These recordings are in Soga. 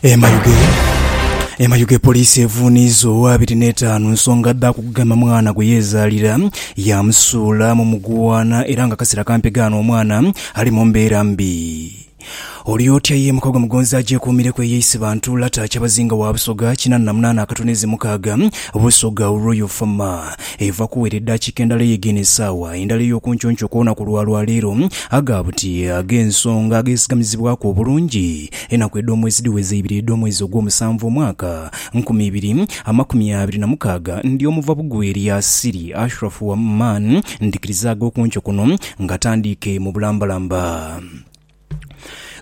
E Mayuge E Mayuge poliisi evuuniiza owa abiri n'etaanu nsonga dha kugema mwana gwe yeezaalira yaamusuula mu muguwaana era ng'akaseera kampi ghano omwana ali mu mbeera mbi. Oli otya ye Mukogwa Mugonzi agyekuumireku eyeise bantu Lata Kyabazinga wa Busoga kinaana na munaana akatono eze mukaaga Busoga Royal Fama eva kuwera eddakiika endala eye geno esaawa endala ey'okuncuuncu okw'olunaku lwa lwaleero aga buti ag'ensonga agesigamizibwaku obulungi Enaku edh'omwezi dhiweza ibiri edh'omwezi ogwomusanvu omwaka nkumi ibiri amakumi abiri na mukaaga, ndi omuva bugwi eri Asiri, Ashrafu wa Man, ndhikirizaaga okunco kuno nga tandiike mu bulambalamba.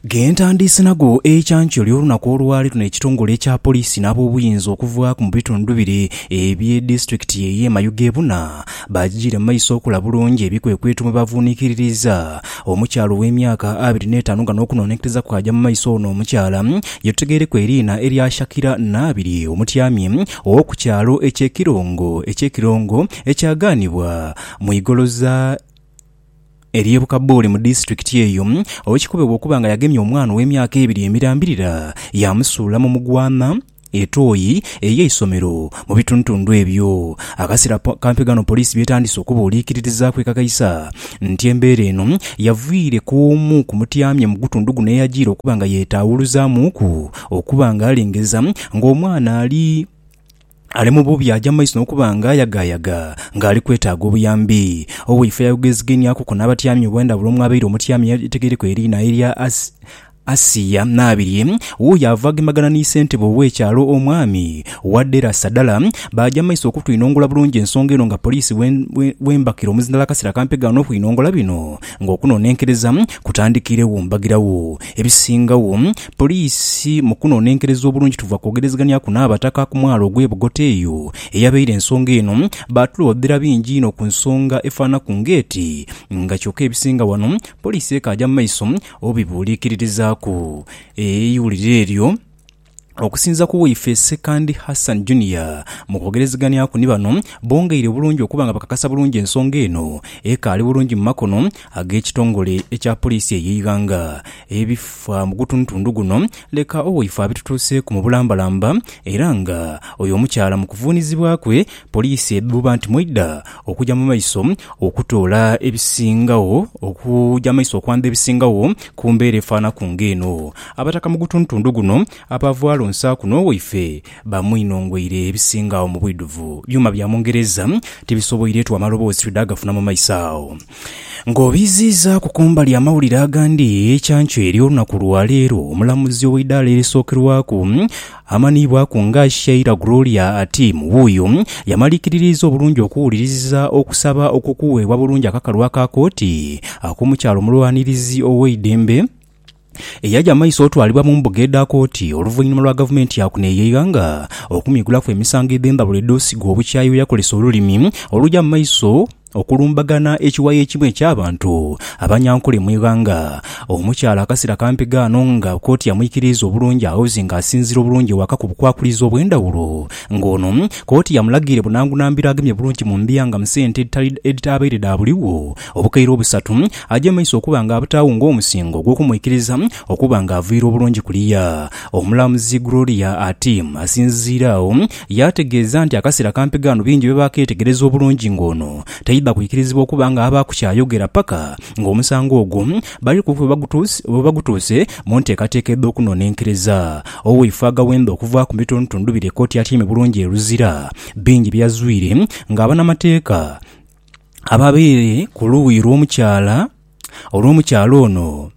Gentandiise nago ekyankyo ly'olunaku olwali luno ekitongole ekya Poliisi n'abobuyinza okuvaaku mu bitundu bire ebye disitulikiti eye Mayuge bona Baajijiira mu maiso okola bulungi ebikwekweto mwe bavuunikiririza omukyala ow'emyaka abiri n'etaanu nga n'okunoonekereza kwaja mu maiso ono omukyala ye tutegeireku eriina erya Shakira Naabirye omutyami ow'oku kyalo eky'e Kirongo eky'e Kirongo ekyagaanibwa mu igoloza ery'e Bukabooli mu disitulikiti eyo owekikobebwa okuba nga yagemya omwana ow'emyaka ebiri emirambirira yaamusuula mu mugwama Etoyi ey'eisomero mu bitundutundu ebyo. Akasera kampi ghano poliisi by'etandise okuba oliikiririzaaku ekakaisa nti embeera eno yavaire k'omu ku mutyamye mu gutundu guno eyajiire okuba nga yetaawuluzamuuku okuba nga alengeza ng'omwana ali ali mu bubi aja mu maiso n'okuba nga ayagaayaga ng'ali kwetaaga obuyambi. Owaife yayogeziganhiakuku n'abatyami obwendhawulo omwabaire omutyami ategeereku eriina erya Asiya n'abirye, wuuyo avaagembagana ni ssentebe ow'ekyalo, Omwami Wadera Sadala, baaja mu maiso okutwinongula bulungi ensonga eno nga poliisi bw'embakira omuzindalo akaseera kampi gaana okwinongola bino nga okunonenkereza kutandikiiregho. Mbagiragho ebisingagho poliisi mu kunonenkereza obulungi tuva kwogerezeghanyaku n'Abataka ku mwalo ogw'e Bugota eyo eyabaire ensonga eno. Baatuloodhera bingi inho ku nsonga efaanaku ng'eti nga kyoka ebisinga wano poliisi ekaaja mu maiso Obibuuliikirirezaaku eiwulire eryo? Okusinza ku waife Ssekandi Hassan Junior mu kwogerezeganyaku ni bano, bongeire obulungi okuba nga bakakasa bulungi ensonga eno ekaali bulungi mu makono ag'ekitongole ekya Poliisi ey'eighanga. Ebifa mu gutundutundu guno leka owaife abitutuuseeku mu bulambalamba era nga oyo omukyala mu kuvuunizibwa kwe, Poliisi edhuuba nti mweidha okuja mu maiso okutoola ebisingagho okuja mu maiso okwandha ebisingagho ku mbeera efaanaku ng'eno. Abataka mu gutundutundu guno abaavugha lonsaaku n'owaife bamwinhongweire ebisinga agho mu bwidhuvu byuma bya mungereza tibisoboiretu amaloboozi twidha gafuna mu maiso agho. Ng'obiiziizaaku ku mbali amawulire agandi, kyanco eri olunaku lwa leero omulamuzi ow'eidaala erisookerwaku amanhiibwaku nga Sheila Gloria Atim wuuyo yamaliikiririiza obulungi okuwuliriza okusaba okw'okuweebwa bulungi akakalu aka kooti ak'omukyala omulwanirizi ow'eidembe eyaja maiso otwalibwa mu mbuga edha kooti oluvainhuma lwa gavumenti ya kuno eyeighanga okumwigulaku emisango edhendhawulo edhosigwa obukyayi bweyakolesa olulimi oluja mumaiso okulumbagana ekiwayi ekimu ekyabantu abanyankole mwighanga. Omukyala akasera kampi ghano nga kooti yamwikiriiza obulungi aoze nga asinzira obulungi ewaka ku bukwakulizo obwendhawulo nga ono kooti yamulagiire bunangunambiro agemye bulungi mu mbiya nga musente edhitabaire dha buligho Obukaire obusatu aja maiso okuba nga abutaagho ng'omusingo ogw'okumwikiriza okuba nga aviire obulungi kuliya. Omulamuzi Gloria ati asinziire agho yaategeeza nti akaseera kampi ghano bingi bye baakeetegereza obulungi ng'ono taidha kwikirizibwa okuba nga abaaku ky'ayogera paka ng'omusango ogwo bali ku bwe bagutuuse mu nteekateeka edh'okunonenkereza. Owaife aghawenda okuva ku bitono tundubire kkooti atyaime bulungi e Luzira bingi bye yazwire ng'abanamateeka ababaire ku luuyi lw'omukyala olw'omukyala ono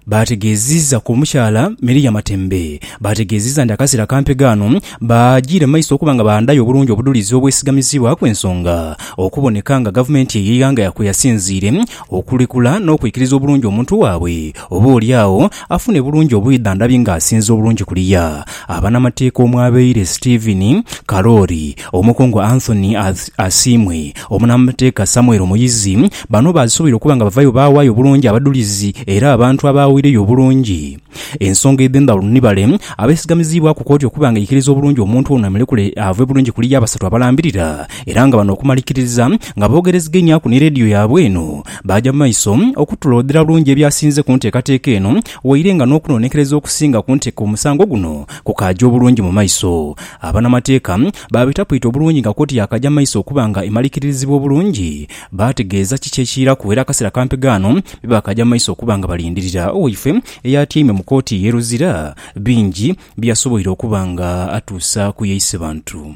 baategeezizza ku mukyala Miria Matembe baategeezizza nti akaseera kampi ghano baagire maiso okuba nga baandhayo obulungi obudhulizi obwesigamizibwaku ensonga okuboneka nga gavumenti ey'eighanga kwe yasinziire okulekula n'okwikiriza obulungi omuntu waabwe oba oli agho afune bulungi obwidhandhabi ng'asinza obulungi kuliya abanamateeka omwabaire Steven Karoori Omukungu Anthony Asiimwe, omunamateeka Samuel Muyizi, bano baasuubira okuba nga bavayo baawaayo obulungi abadhulizi era abantu abaaweireyo obulungi ensonga edhendhawulo nibale abeesigamizibwaku kooti okuba nga eikiriza obulungi omuntu ono emulekule ave bulungi kuli y'abasatu abalambirira era nga bano okumalikiriza nga boogereziganyaku ni leediyo yaabwe eno baaja mu maiso okutulooodhera bulungi ebyasinze ku nteekateeka eno waire nga n'okunoonekereza okusinga ku nteeka omusango guno kukaaja obulungi mu maiso. Abanamateeka baabitapuita obulungi nga kooti yaakaja mu maiso okuba nga emalirikirizibwa obulungi, baategeeza kiki ekiiraku era akaseera kampi ghano bye baakaja mu maiso okuba nga balindirira owaife eyaatyaime mu kooti ey'e Luzira bingi bye yasoboire okuba nga atuusa ku y'eisebantu.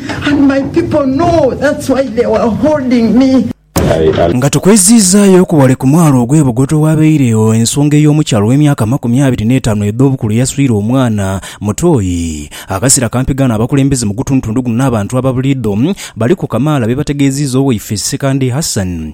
and my people know that's why they were holding me. Nga tukweziizaayo ku wale ku mwalo ogw'e Bugoto ewaabaire ensonga ey'omukyala ow'emyaka amakumi abiri n'etaanu edh'obukulu eyaswire omwana mutoyi akaseera kampi ghano, abakulembeze mu gutundutundu guno n'abantu ababuliidho baliku kamaala beebategeeziiza Oweifesi Ssekandi Hassan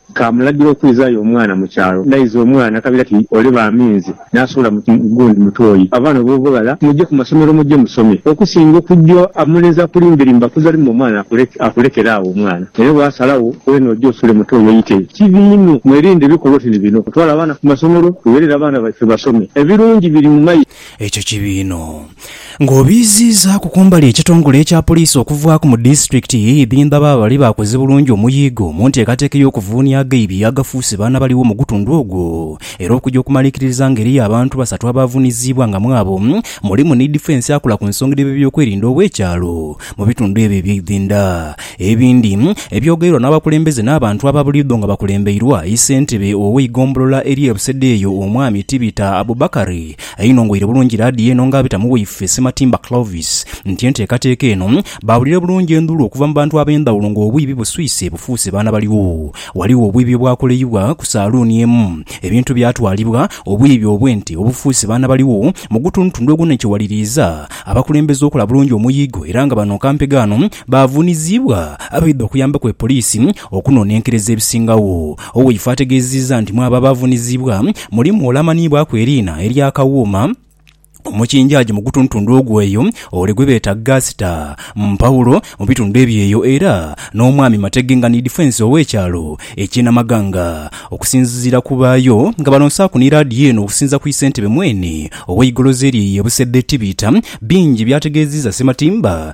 Kaamulagira okwizaayo omwana mu kyalo. N'aiza omwana, akabira ati, Ole ba minzi. N'asuula mu gundi mutoyi. Abaana ob'obughala, muje ku masomero muje musome. Okusinga okugya omulenzi akulimberimba kuza limu omwana akulekere agho omwana. Naye bw'asalagho, weena oje osuule mutoyi oite. Kibi inho. Mwerinde ebikolwa oti ni bino. Kutwala baana ku masomero, tugherere abaana baife basome. Ebirungi biri mu maiso. Ekyo kibi inho. Ng'obiiziizaaku kumbali ekitongole ekya poliisi okuvaaku mu disitulikiti ye Ibinba baba bali baakoze bulungi omuyiigo mu nteekateeka ey'okuvuunia aghaibi agafuuse baana baligho mu gutundhu ogwo era okuja okumalikiririza nga eriyo abantu basatu abaavuniziibwa nga mwabo mulimu ni difensi akola ku nsonga dh'ebyeby'okwerinda ow'ekyalo mu bitundhu ebyo eby'eidhinda Ebindi ebyogeirwa n'abakulembeze n'abantu aba buliidho nga bakulembeirwa yi Ssentebe ow'eigombolola ery'e Busedheeyo Omwami Tibita Abubakari ainongoire bulungi laadiyo eno nga abita mu waife Ssematimba Clovis nti enteekateeka eno baawulire bulungi endhuulu okuva mu bantu ab'endhawulo ng'obwiibi buswise bufuuse baana baligho Ghaligho obwiibi obwakoleibwa ku saaluuni emu ebintu byatwalibwa Obwiibi obw'ente obufuuse baana baligho mu gutundutundu ogunhenkeghaliiriiza abakulembeze okola bulungi omuyigo era nga bano kampegano Baavunizibwa abaidha okuyambaku e poliisi okunonenkereza ebisingagho. Oweifo ategezeeza nti mwabo abaavunizibwa mulimu ole amanhiibwaku eriina erya Kawuuma, omukinjaagi mu gutuntundu ogwo eyo, ole gwebeeta Gaasita, Mpawulo mu bitundu ebyo eyo era n'omwami Matege nga ni difensi ow'ekyalo ekye Namaganga. Okusinziira ku baayo nga balonsaaku ni laadiyo eno okusinza ku isentebe mweene ow'eigolozi eryo eye Busedde Tibita, bingi byategeziiza Ssematimba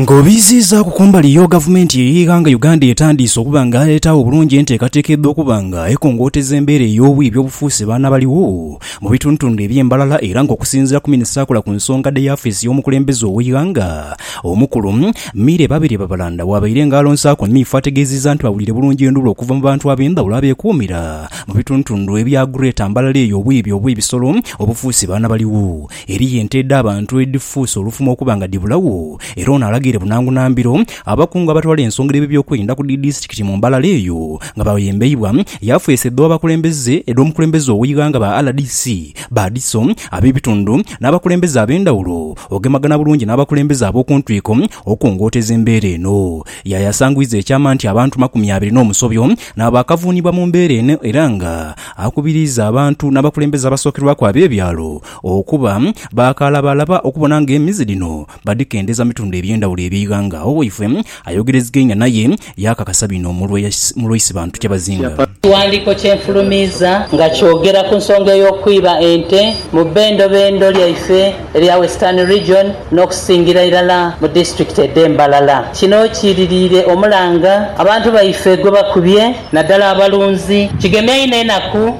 Nga obiiziizaaku ku mbali yo, Gavumenti y'eighanga Uganda etandiise okuba nga etaagho bulungi enteekateeka edha okuba nga ekongooteza embeera ey'obwibi obufuuse baana baligho mu bitundutundu ebye Mbarara era nga okusinziira ku Minisita akola ku nsonga dhe y'afeesi y'omukulembeze ow'eighanga omukulu Milly Babirye Babalanda bwabaire nga alonsaaku Miifo ategeziiza nti bawulire bulungi enduulu okuva mu bantu abendhawulo abekuumira mu bitundutundu ebya Greater Mbarara eyo obwibi obw'ebisolo obufuuse baana baligho. Eriyo ente edh'abantu edhifuuse olufumo okuba nga dhibulagho era ono alagaire bunangu na mbiro abakungu abatwala ensonga dh'ebyokwerinda ku dhi disitulikiti mu Mbarara eyo nga bayembeibwa yafeesi edh'abakulembeze edh'omukulembeze ow'eighanga ba rdc, ba DISO, ab'ebitundu n'abakulembeze ab'endhawulo ogemagana bulungi n'abakulembeze ab'oku ntwiko okungooteza embeera eno. Yayasangwiza ekyama nti abantu makumi abiri n'omusobyo nabo baakavuunibwa mu mbeera eno era nga akubiriiza abantu n'abakulembeze abasookerwaku ab'ebyalo Okuba baakalabalaba okubona ng'emizi dhino badhikendeza mu bitundu eby'endhawulo eby'eighanga, awo waifwe ayogerezegainya naye yaakakasa bino mu lwa Isibantu Kyabazinga. Ekighandiiko kye nfulumiiza nga kyogera ku nsonga ey'okwiba ente mu bbendobendo lyaife erya Western Region n'okusingira irala mu disitulikiti edh'e Mbalala. Kino kiiririire omulanga abantu baife gwe bakubye naddala abalunzi. Kigemya inho enaku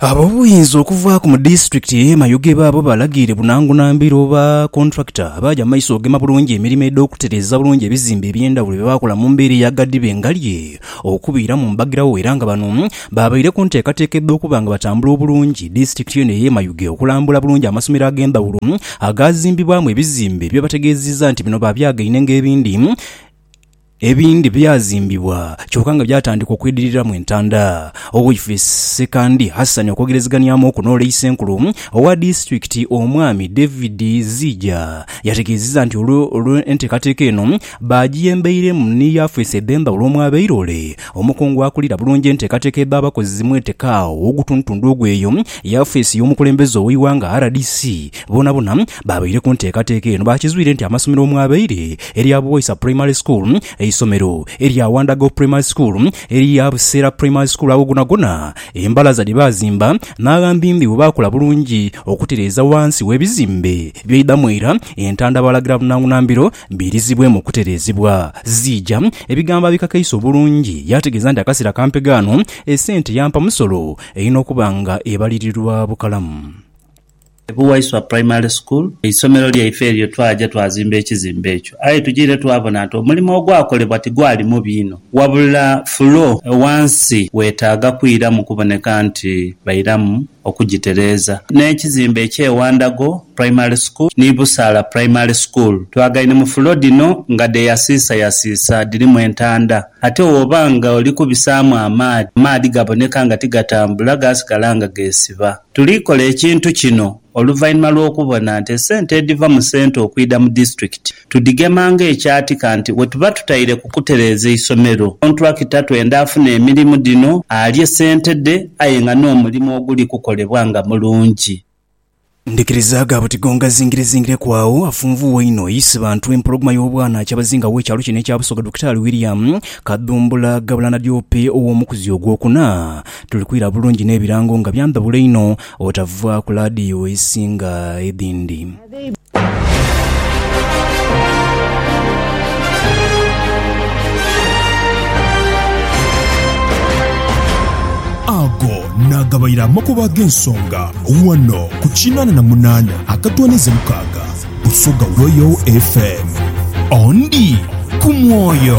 Ab'obuyinza okuva ku mu disitulikiti eye Mayuge baabo balagiire Bunangu Nambiro oba kontulakita abaaja mu maiso ogema bulungi emirimo edh'okutereeza obulungi ebizimbe eby'endhawulo bye baakola mu mbeera eya ghadhibe ngalye okubiira mu mbagirawo era nga bano baabaire ku nteekateeka edh'okuba nga batambula obulungi disitulikiti eno eye Mayuge okulambula bulungi amasomero ag'endhawulo agaazimbibwamu ebizimbe bye bategeezizza nti bino baabyageine ng'ebindi Ebindi byazimbibwa kyoka nga byatandika okwidhiriramu entanda. Oweifrisi Ssekandi Hassan okwogerezeganiamu oku n'Olei Ssenkulu owa disitulikiti Omwami David Ziija yategeezizza nti olwo enteekateeka eno baagiyembeiremu ni yafeesi eBemba olwo omwabaire ole omukungu akulira bulungi enteekateeka edh'abakozi mwetekaagho ogutundutundu ogw'eyo yafeesi y'omukulembeze ow'eighanga, rdc, boonabona. Baabaire ku nteekateeka eno baakizwire nti amasomero omwabaire erya Buwaisa Primary School, eisomero erya Wandago Primary School, erya Buseera Primary School ago gonagona embalaza dhe baazimba n'aghambimbi bwe baakola bulungi okutereeza wansi w'ebizimbe by'eidhamu era entanda baalagira bunangunambiro biirizibwemu okutereezebwa ziija ebigambo abikakaise obulungi yaategeeza nti akaseera kampega ano esente yampa musolo erina okuba nga ebalirirwa bukalamu. Ku Waiswa Primary School, eisomero lyaife eryo, twaja twazimba ekizimbe ekyo. Aye tujiire twabona nti omulimo ogwakolebwa tigwali mubi inho, wabula fuloo ghansi weetaaga kwiramu kuboneka nti bairamu okugitereeza. N'ekizimbe eky'e Wandago Primary School ni Busaala Primary School twagaine mu fuloo dhino nga dheeyasiisayasiisa dhirimu entanda. Ate woba ng'oli kubisaamu amaadhi, amaadhi gaboneka nga tigatambula, gaasigala nga geesiba. Tuli kola ekintu kino oluvainhuma lw'okubona nti esente edhiva mu sente okwidha mu disitulikiti tudhigema ng'ekyati kanti wetuba tutaire ku kutereeza eisomero. Kontulakita twenda afune emirimu dhino alye sente dhe aye nga n'omulimu oguli kukolebwa nga mulungi. Ndhikiriza ga buti gonga zingirizingire ku agho afunvugha einho yisi bantu empologoma y'obwana Kyabazinga w'ekyalo kino ekya Busoga Dokitaali William Kadhumbula Gabula Nadiope ow'omukuzi ogwokuna Tuli kwira bulungi n'ebirango nga byandhabula einho obutava ku laadiyo ezisinga edhindi. Ago naagabaire amakubo ag'ensonga ghano ku kinaana na munaana akatwanize mukaaga Busoga Royal FM. Ondi ku mwoyo.